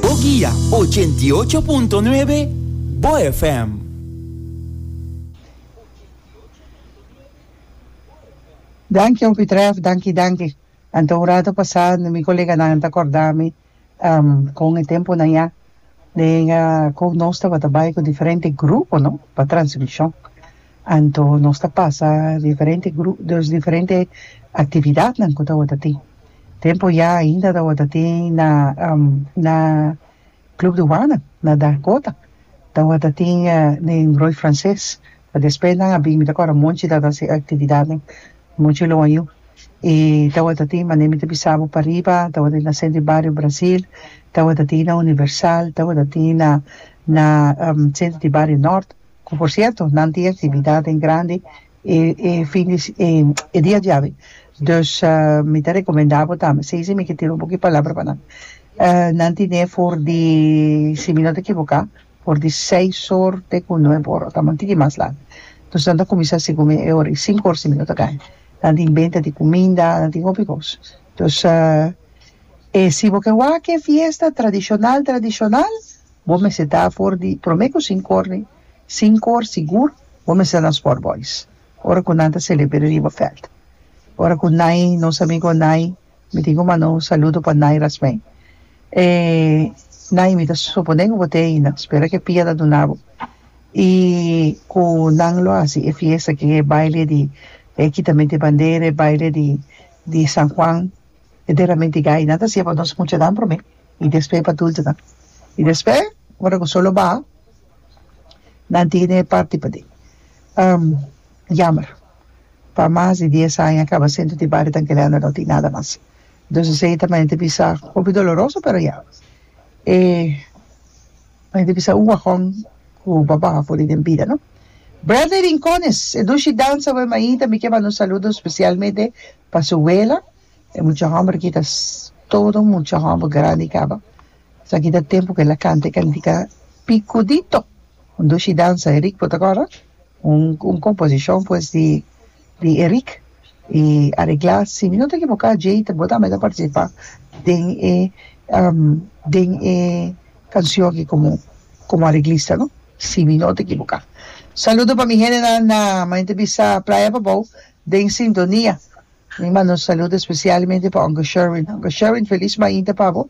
Bo guia ochenta i ocho punto nuebe Bo FM. Danki hopi Tref, danki danki. Anto un rato pasá mi koleganan a ta kòrda mi kon e tempunan ya den kon nos tabata bai ku diferente grupo no pa transmishon. Anto nos ta pasa diferente gru diferente aktividatnan ku tabata tin. Tempo ya ainda tabata tin na na Club Douane na Dakota tabata tin den Roy Frances pa despues nan a bin mi ta kor a monchi ta hasi actividadnan monchi lo a yu y tabata tin mane mi ta bisa bo pariba tabata tin na Centro y Barrio Brasil tabata tin na Universal tabata tin na na Centro y Barrio Norte cu por cierto nan tin actividadnan grandi e e fin di e e dia diawe dus mi ta recomenda bo tambe sey mi ke tira un poco palabra pa nan nan tine for di si mi no ta ekivoka for di seis or te ku nuebe ora tabata un tiki mas laga dus nan ta kuminsá segun mi e ora di sinku ora si mi no ta kai nan tin benta di kuminda nan tin hopi kos dus e si bo ke wak e fiesta tradishonal tradishonal bo mester ta for di prome ku sinku ora ni Sin kor sigur bo mester nos por boys ora ku nan ta selebr'e riba veld ora ku nai nos amigo nai mi tin ku manda un saludo pa nai rasmei e nai mi ta suponé ku bo te aina spera ke pia ta duna bo i ku nan lo hasi e fiesta ke e baile di e kitament di bandera e baile di di San Juan e derramment di gai nan ta hasié pa nos muchanan prome i despe pa dultonan i despe ora ku sol lo baha. na entiende e parti pa tin um jammer pa mas di dies aña a caba centro di barrio tan kelende no tin nada mas entonces esey ta manera ta bisa hopi doloroso pero ya e manera ta bisa un wagon cu bo baha for di den bida no Bradley Rincones e dushi danza awor ahi tambe kier manda un saludo specialmente pa su wela e mucha homber aki ta todo mucha homber grandi caba. Esaki ta tempu cu el a canta y cantica Picudito, un dushi danza, Erick por ta acorda? Un un composicion pues di di Erick y aregla, si mi no ta equivoca Jay ta bo tambe ta participa den e den e cancion aki como como areglista no, si mi no ta equivoca. Saludo pa mi gentenan na mente bisa Playa Babou den sintonia. Mi manda un saludo especialmente pa Uncle Sherwin. Uncle Sherwin feliz mainta pa bo.